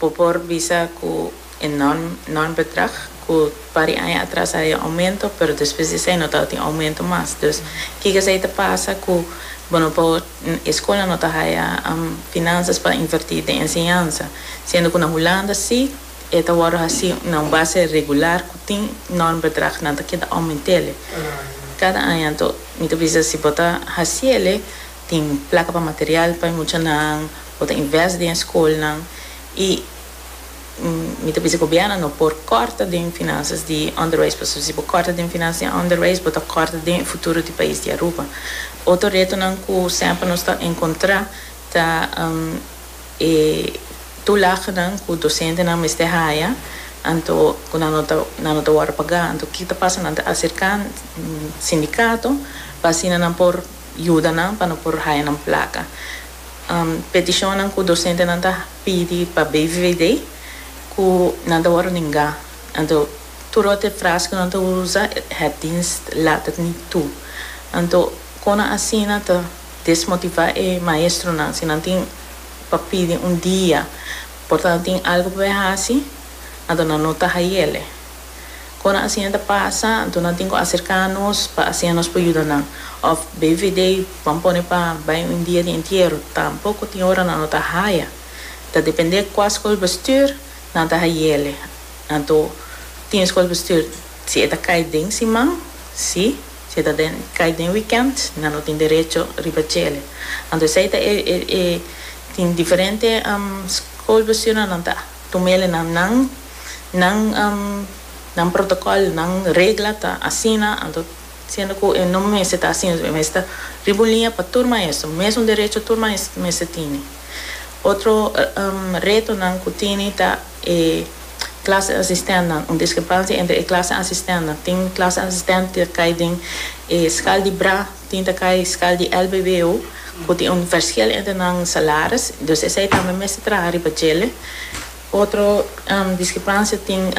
Bo por bisa cu e norm bedrag cu pari aña atras a haña aumento pero despues di esey no tabatin aumento mas. Dus kiko esey ta pasa cu bo no por, e scolnan no ta haña finanzas pa inverti den enseñansa. Siendo cu na Hulanda si e ta wordo haci na un base regular cu tin norm bedrag nan ta keda aumentele cada aña. Anto mi ta bisa si bo ta haciele Tin plaka pa material pa e muchanan ku ta invest den e skolnan i mi ta bisa ku gobièrnu no por kòrta den finansas di onderwijs pasobra si bo kòrta den finansas di onderwijs bo ta kòrta den e futuro di pais di Aruba. Otro retonan ku semper nos ta enkontrá ta e tulaganan ku dosentenan mester haya anto ku nan no ta nan no ta wòrdu pagá anto ke ta pasa nan ta aserká sindikato pa asina nan por. yuda nan pa no por haya nan plaka. Peticionnan cu docentenan ta pidi pa BVVD cu nan ta worde ninga. Anto tur otro frase cu nan ta usa het dienst laat het niet toe. Anto cono asina ta desmotiva e maestronan si nan tin pa pidi un dia por ta nan tin algo pa bay haci anto nan no ta hayele. Cu nan asina ta pasa, anto nan tin cu acerca nos pa asina nos por yuda nan. Of BVD ban pone pa bay un dia di entiero. Tampoco tin ora nan no ta haya. Ta depende cua scolbestuur nan ta hayele. Anto tin scolbestuur si e ta cay den siman, si. Si e ta den cay den weekend, nan no tin derecho riba chele. Anto esey ta e e tin diferente scolbestuurnan nan ta tumele na nan. Nan nan protocol, nan regla ta asina, anto siendo cu e no mester ta asina, e mester ta riba un liña pa tur maestro, mesun derecho tur maestro mester tini. Otro retonan cu tini ta e clase asistentnan, un discrepancia entre e clase asistentnan, tin clase asistent cu ta cay den e schaal di bra, tin ta cay den schaal di lbbo, cu tin un verschil entre nan salaris, dus esey tambe mester traha riba djele. Otro diskrepansia tin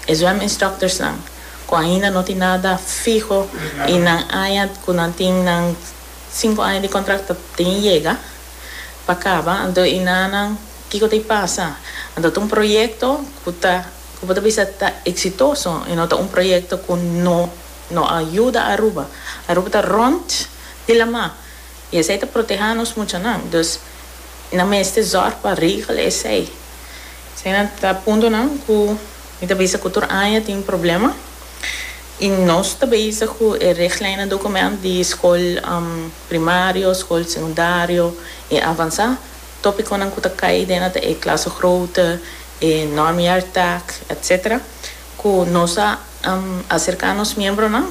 e zwèm instructorsnan ku ainda no tin nada fiho i nan aña ku nan tin nan sinku aña di kontrakt ta tin yega pa kaba anto i na nan kiko ta i pasa anto ta un proyekto ku ta ku bo ta bisa ta eksitoso i no ta un proyekto ku no no a yuda Aruba Aruba ta rònt di laman. I esei ta protehá nos muchanan. Dus nan mester zòrg pa regla esei. Esei nan ta puntonan ku mi ta bisa ku tur aña tin problema. I nos ta bisa ku e regleinnan dokument di skol primario, skol sekundario i avansá, tópikonan ku ta kai den ata e klasgroote, e normjaartaak, etsetera, ku nos a aserká nos miembronan